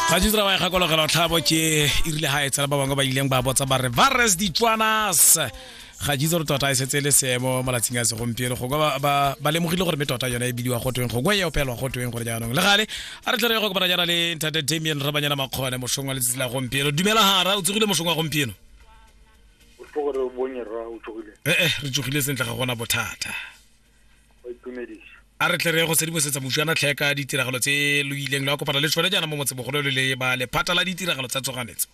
ga di tsira ba e gakologela tlhabo ke e rile ga e tsela ba bangwe ba ileng ba botsa ba re vares ditswanas ga jitse gore tota e setse e le seemo malatsing a segompieno gongwe ba- ba- ba lemogile gore mme tota yone e bidiwa gotweng gongwe e opelwa gotweng gore jaanong le gale a re tlhere go kopana jaana le ntate damian rabanyana makgone mošong wa letsatsi la gompieno dumela gara o tsogile mošong wa gompieno o tlo gore o bonye rra o tsogile ee re tsogile sentle ga gona bothata a re tle re go sedimosetsa moswana tlhe ka ditiragalo tse lo ileng la kopana le tsone jaana mo motsebogolo le le ba lephata la ditiragalo tsa tsoganetso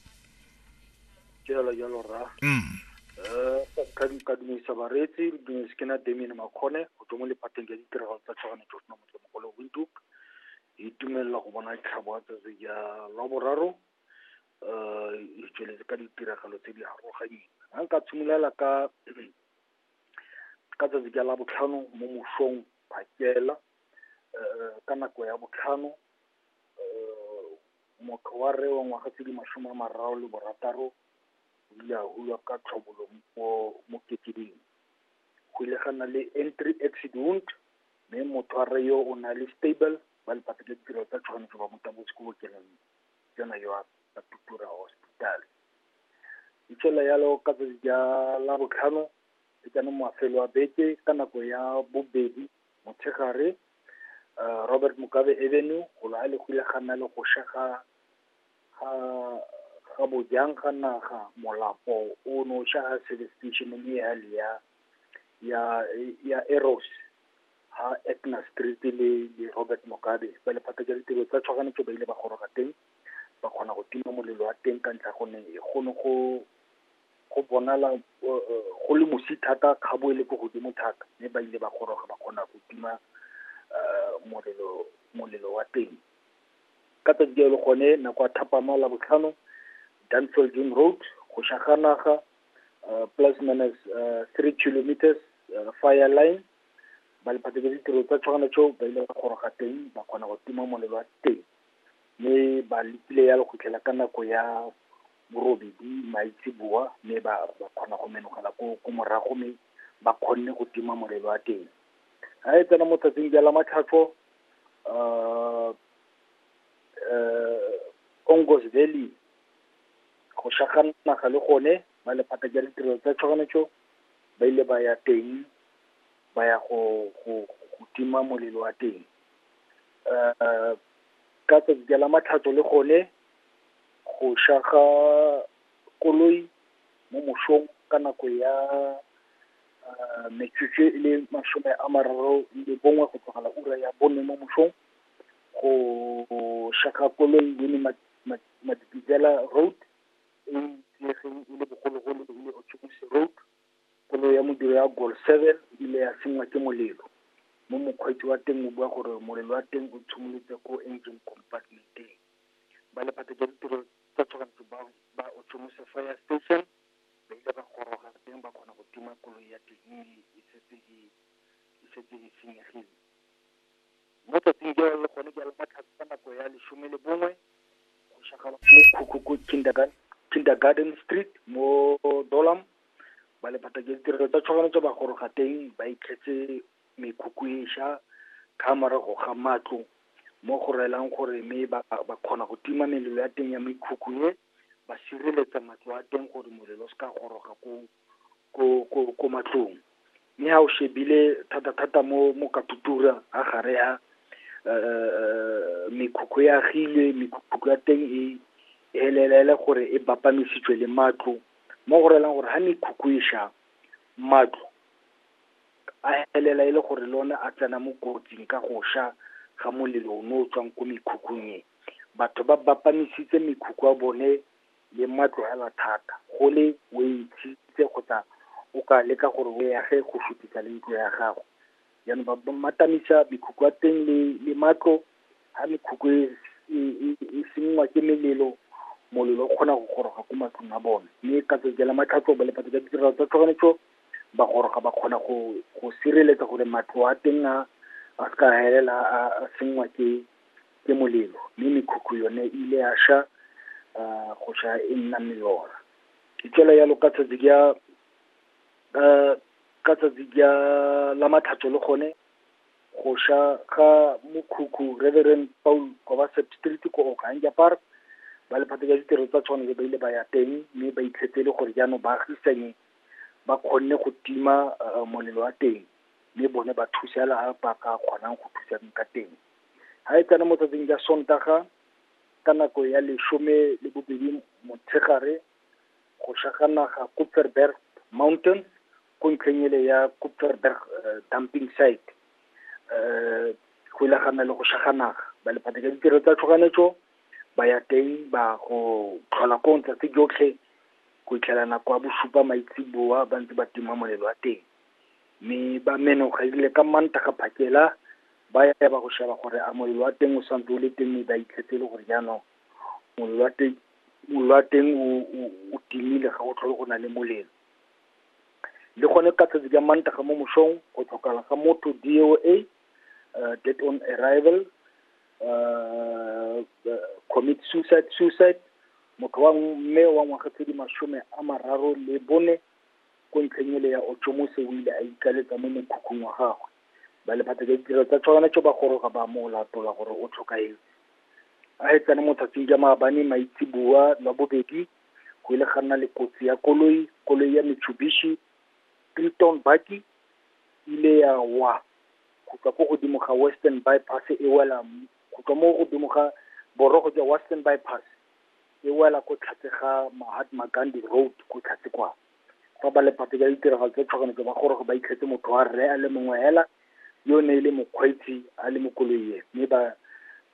jalo jalo ra mm. eh, ka dumedisa bareetsi re dumedise ke na damien makgone go tswa mo lephateng ya ditiragalo tsa tshwanetso sena motsemogolo windhoek e dumelela go bona tlhabo ya tsatsi ya la boraro um e tsweletse ka ditiragalo tse di aroganyeng a nka tshimolola ka ka tsatsi ka labotlhano mo mosong phakela um ka nako ya botlhano um motho wa rre wa ngwaga tse di masome a mararo le borataro o ile a hulwa ka tlhobolo mo mo kekeding go ile ga nna le entry exit wound mme motho wa rre yo o na le stable ba lepata le ditiro tsa tshwanetse ba mo tabotse ko bookelong jona yoape la Tutura Hospital. Itse la yalo ka tsatsi ja la botlhano e tsena mafelo a beke ka nako ya bobedi motshegare uh, Robert Mugabe Avenue go la le gile ga nna le go sha ga ga ga bojang ga naga molapo o no sha ha service station mme ya le ya ya ya Eros ha Etna Street le le Robert Mugabe ba lephata ja ditiro tsa tshoganyetso ba ile ba goroga teng ba kgona go tima molelo wa teng ka ntlha gonne go ne go go bonala go le mosi thata kgabo e le ko godimo thata mme ba ile ba goroga ba kgona go tima molelo molelo wa teng ka tsatsi jalo gone nako ya thapama la botlhano danfeld june road go shaga naga plus minus three kilometers fire line ba lephatsa ke ditiro tsa tshwana tseo ba ile ba goroga teng ba kgona go tima molelo wa teng mme ba letile ya go fitlhela ka nako ya borobedi maitseboa, mme ba ba kgona go menagela ko ko morago mme ba kgonne go tima molelo wa teng. Ga e tsena mo tsatsing ja la matlhatso Ongos Valley go naga le gone ba lephata ja ditirelo tsa tshoganyetso ba ile ba ya teng ba ya go go go tima molelo wa teng. ka tsatsi ka la Matlhatso le gone, go sha ga, koloi, mo mosong, ka nako ya, metsotso e le masome a mararo le bongwe go tlogela ura ya bone mo mosong, go sha ga koloi Winnie Madikizela Road, e itsegeng e le bogologolo e le Orthodox Road. Koloi ya modiri ya Gol seven e ile ya sengwa ke molelo, mo mokgweetsi wa teng o bua gore molelo wa teng o tshimolotse ko engine compartment-eng. Ba lephata jwa ditiro tsa tshoganyetso ba, ba Otshomose Fire Station, ba ile ba goroga teng ba kgona go tima koloi ya teng e ne e setse e, e setse e senyegile. Mo tsatsing jalo le gone jalo ka tlhako ka nako ya lesome le bongwe, go shagala mo Khukhuku Kindergarten, Kindergarten Street mo Dolam, ba le phathaka ya ditirelo tsa tshoganyetso ba goroga teng ba itlhetse mekhukhu e sha ka morago ga matlo mo go reelang gore mme ba ba kgona go tima melelo ya teng ya mekhukhu e ba sireletsa matlo a teng gore molelo o se ka goroga ko ko ko ko matlong Mme ha o shebile thata-thata mo, mo Katutura, ha gare ha, mekhukhu e agilwe, mekhukhu ya teng e, e elela e le gore e bapamisitswe le matlo, mo go rayang gore ha mekhukhu e sha, matlo, a elela e le gore le one a tsena mo kotsing ka go sha, ga molelo o ne o tswang ko mekhukhung e. Batho ba bapamisitse mekhukhu ya bone, le mma tlogela thata, go le, o e ntshitse kgotsa , o ka leka gore o e age go fetisa le ntlo ya gago. Jaanong ba ba mmatamisa mekhukhu ya teng le, le matlo, ha mekhukhu e, e e e senngwa ke melelo , molelo o kgona go goroga ko matlong a bone, mme ka tsatsi la matlhatso ba lepata ka ditirelo tsa tshoganyetso, ba goroga ba kgona go, go sireletsa gore matlo a teng a, a seka a elela a, a senngwa ke. ke molelo, mme mekhukhu yone e ile ya sha, go sha e nna melora. Ke tswa jalo ka tsatsi ka, ka tsatsi ka la Matlhatso le gone, go sha ga mokhukhu Reverend Paul Kovaset street ko Okahandja Park, ba lephata la ditiro tsa tshwanelo ba ile ba ya teng, mme ba itlhetse e le gore jaanong baagisani, ba kgonne go tima molelo wa teng. le bone ba thuse fela ha ba ka kgonang go thusa ka teng. Ha e tsena mo tsatsing la Sontaga, ka nako ya lesome le bobedi motshegare, go sha ga naga Koepoornberg Mountain, ko ntlheng ele ya Koepoornberg dumping site, go ile ga nna le go sha ga naga. Ba lephatla la ditiro tsa tshoganyetso, ba ya teng ba go tlhola koo letsatsi lotlhe, go fitlhela nako ya bosupa maitseboa ba ntse ba tima molelo wa teng. mme ba menogile ka Mantaga phakela , ba ya ba ya go sheba gore a molelo wa teng o sa ntse o le teng mme ba itlhetse e le gore jaanong , molelo wa teng, molelo wa teng o o o timile ga go tlhole go na le molelo. Le gone ka tsatsi ka Mantaga mo mosong, go tlhokala ga motho D_O_A, dead on arrival, commit suicide, suicide, motho wa mme wa ngwaga tse di masome a mararo le bone. ko ntlheng ele ya Ochomose o ile a ikaletsa mo mokhukhung wa gagwe. Ba Lephata jwa Ditirelo tsa Tshoganyetso ba goroga ba mo latola gore o tlhokahetse. A hetsane mo tsatsin jwa maabane maitseboa lwa bobedi, go ile ga nna le kotsi ya koloi, koloi ya Mitsubishi Triton Bakkie ile ya wa go tswa ko godimo ga Western By Pass e wela, go tswa mo godimo ga borogo jwa Western By Pass. e wela ko tlhatse ga Mahatma Gandhi Road ko tlhatse kwa fa ba lepate ka ditiragalo tsa tshoganyetso ba goroga ba itlhetse motho wa rre a le mongwe hela yo ne e le mokgweetsi a le mo koloing mme ba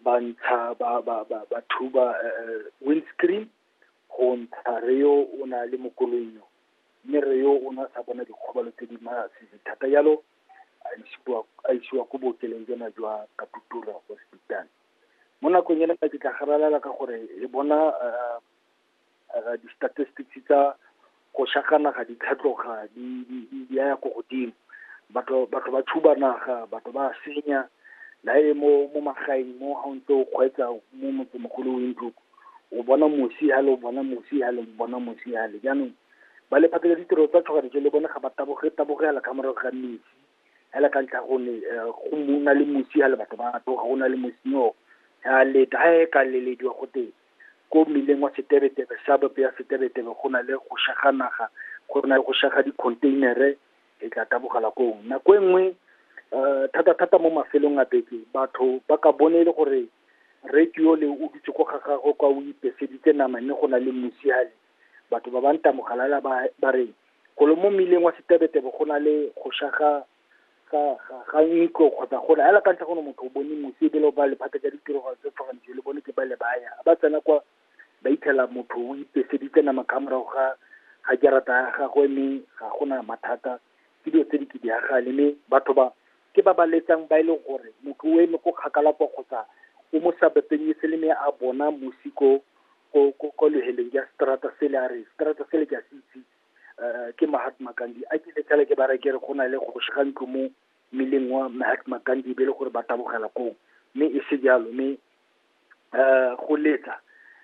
ba ntsha ba ba ba ba thuba windscreen go ntsha re yo o na le mo koloing yo mme re yo o ne a sa bona dikgobalo tse di masisi thata jalo a isiwa a isiwa ko bookelong jona jwa Katutura hospital. mo nakong ena ke tla garalela ka gore e bona di-statistics tsa go shaka naga di tlhatloga di ya ya ko godimo batho batho ba tshuba naga batho ba senya la e mo mo magaeng mo ga o ntse o kgweetsa mo motsemogolo o ntlo o bona mosi ha le o bona mosi ha le o bona mosi ha le jaanong ba lephata la ditiro tsa tshogadijo le bone ga ba taboge tabogela ka morago ga metsi fela ka ntlha go ne eh, go mo na le mosi a le batho ba tloga go na le mosi o ya leta ha e ka lelediwa go teng ko mmileng wa setebetebe sabope ya setebetebe go na le go shaga naga go na le go shaga dikhontheinere e tla tabogela koo nako e nngwe um thata thata mo mafelong a beke batho ba ka bone e le gore radio le o dutse ko ga gagwe kwa o ipeseditse nama mme go na le mosi a le Batho ba ba ntamo galala ba, ba re, golo mo mmileng wa Sitebetebe go na le go sha ga, ga, ga, ga ntlo kgotsa go na, hela ka ntlha gone motho o bone mosi ebile o ba lephata ja ditiragalo tse tshwarang dijo le bone ke ba le ba ya. Ba tsena kwa, ba itlhela motho o ipeseditse nama ka morago ga, ga jarata ya gagwe mme ga gona mathata, ke dilo tse di kidagale mme batho ba, Ke ba ba letsang ba e leng gore motho o eme ko kgakala kwa kgotsa o mo sa bepenyetse le me a bona mosi ko ko ko ko leheleng ya strata sele a re strata sele ke a se itse eh, ke Mahatma Gandhi a ke letsale ke ba re ke re go na le kgoshi ga ntlo mo mmileng wa Mahatma Gandhi be e le gore ba tabogela koo mme e se jalo mme um go letsa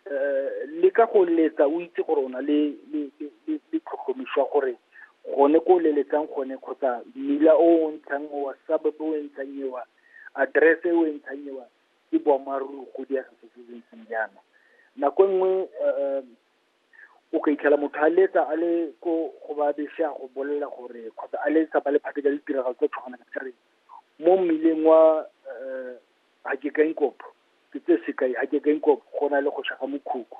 um le ka go letsa o itse gore o na le le tlhotlhomišwa gore gone ko leletsang gone kgotsa mmila o o ntshang owa suburb o e ntshang ewa address e o e ntshang ewa ke boammaaruri go diega se se ntseng jaana nako e nngwe um o ka itlhela motho a letsa a le ko go ba bese a go bolelela gore kgotsa a letsa ba lephate ka ditiragalo tse tshwanang ka re mo mmileng wa um a ke ka inkopo ke tse sekai a ke ka inkopo go na le go shaga mokhukhu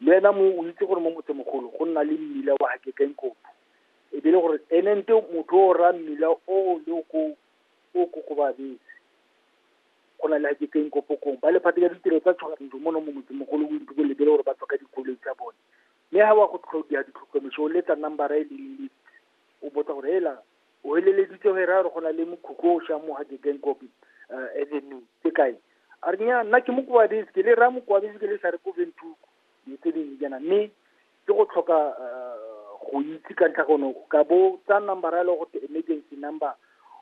le ena mo o itse gore mo motsemogolo go nna le mmila wa ga ke ka inkopo e be le gore ene nte motho o ra mmila o le o ko o ko go babetse go na le ga ke ka inkopo kong ba lephate ka ditiro tsa tshogantso mo no mo motsemogolo o itse go lebele gore ba tswa ka dikoloi tsa bone mme ga wa go tlhodia ditlhokomeso o letsa number e le o botsa gore hela O heleleditse ge ra re go na le mokhukhu o šang mo Hagegen Kopi uh, eh, Avenue ke kae a re nya nna ke mokwabese ke le ra mokwabese ke le sa re ko ventuku le tse dingwe jana mme ke go tlhoka eh, go itse ka ntlha gono ka bo tsa number ya le go emergency number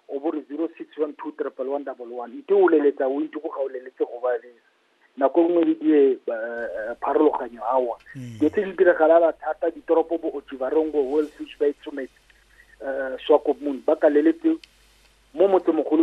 o bo re zero six one two triple one double one nte o leletsa o ntse go ga o leletse go ba lesa nako e nngwe le die pharologanyo awa mm. dilo tse di diragalela thata ditoropo bo ochivarongo wellfish bay tsometse um swakopmon ba kaleletse mo motsemogolo